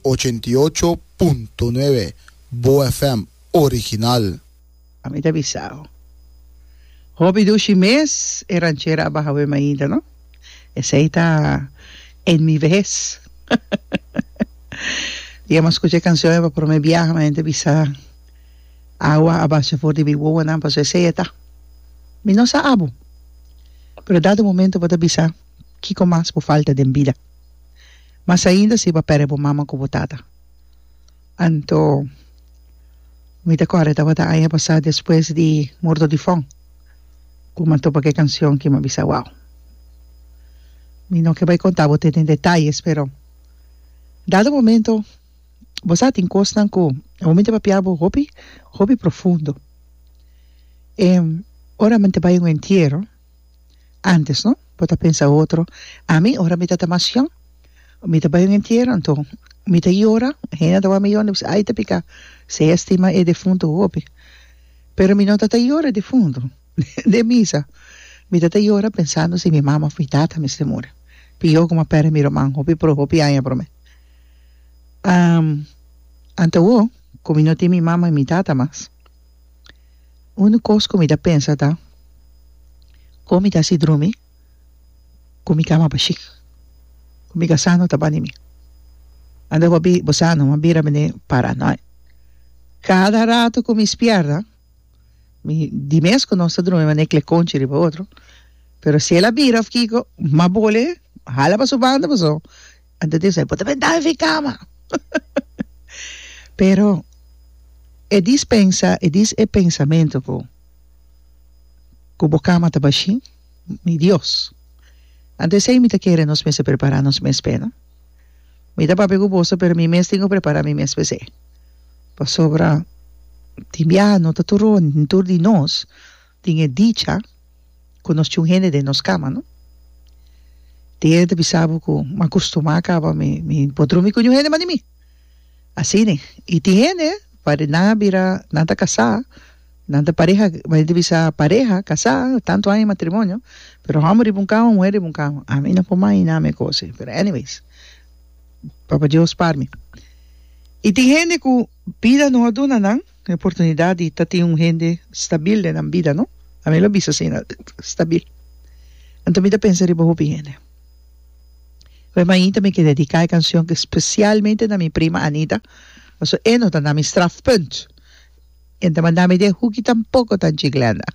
Ochenta i ocho punto nuebe Bo FM original. A mi ta bisao. Hopi dushi mes e ranchera a baha wem ainda no. Esey ta en mi vehes. Di a mas scucha e cancion e pa prome biaha mi a yente bisa awa a basha for di mi wowonan pasobra esey e ta. Mi no sa abo pero dado momento bo ta bisa. Kiko mas bo falta den bida? Mas ainda si bo a pèrdè bo mama ku bo tata. Anto, mi ta kòrda tabata aña pasá despues di Murdo di Fon ku mi a topa ku e kansion ku mi a bisa wou. Mi no ke bai kontá bo te den detayes, pero dado momento bo sa tin kosnan ku e momente papia bo hopi hopi profundo. E ora mi ta bai un entiero. Antes no, bo ta pensa otro, ami ora mi ta ta masyon, mi ta bai un entiero anto mi ta yora, hende a ta wak mi yora, mi ta bisa ai ta pika, se a estima e defuntu hopi, pero mi no ta ta yora e defuntu, den misa mi ta ta yora pensando si mi mama of mi tata a mester muri, pi yo como a perde mi ruman hopi pro hopi aña prome, anto awo cu mi no tin mi mama y mi tata mas. Un kos ku mi ta pensa ta, kon mi ta hasi drumi ku mi kama bashí, ku mi kasá no ta bani mi? Anda bo a bi bo sa numa bira bini para noi. Kada ratu ku mi spièrta mi di mes ku nos ta drumi manera klekonchi riba otro, pero si el a bira òf kiko, m'a bole, a hala pa su banda pasobra Anto e disa, e por ta bendá e fikama. Pero e dispensa, e dis e pensamentu ku ku bo kama ta bashí, mi Dios, anto esei mi ta kere nos mester prepará nos mes p'e. No? Mi ta papia ku boso, pero mi mes tin ku prepará mi mes p'esei. Pasobra tin biaha no ta tur di nos. Tin e dicha ku nos tin un hende den nos kama, no? Tin hende ta bisa bo ku, M'a kustumá kaba mi, mi por drumi ku niun hende mas di mi. Asina. I tin hende, pasobra nan a bira, nan ta kasá, nan ta pareha, bo hende ta bisa pareha, kasá, tantu aña di matrimonio, pero hòmber riba un kama, muher riba un kama. Ami no por mahiná mi e kos ei. Pero anyways, Papa Dios par mi. I tin hende ku bida no a duna nan. Un oportunidat di ta tin un hende stabil den nan bida, no? A mi lo bisa asina, stabil. Anto mi ta pensa riba hopi hende. Oe mainta mi ke dediká e kanshon spesialmente na mi prima Anita, pasobra e no ta na mi strafpunt. E no ta manda mi den hoeki, tampoko ta G. Glenda.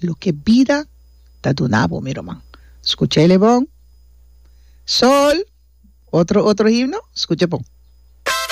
loke bida ta duna bo, mi ruman. Skucha el e bon. Sol, otro, otro himno, skucha bon.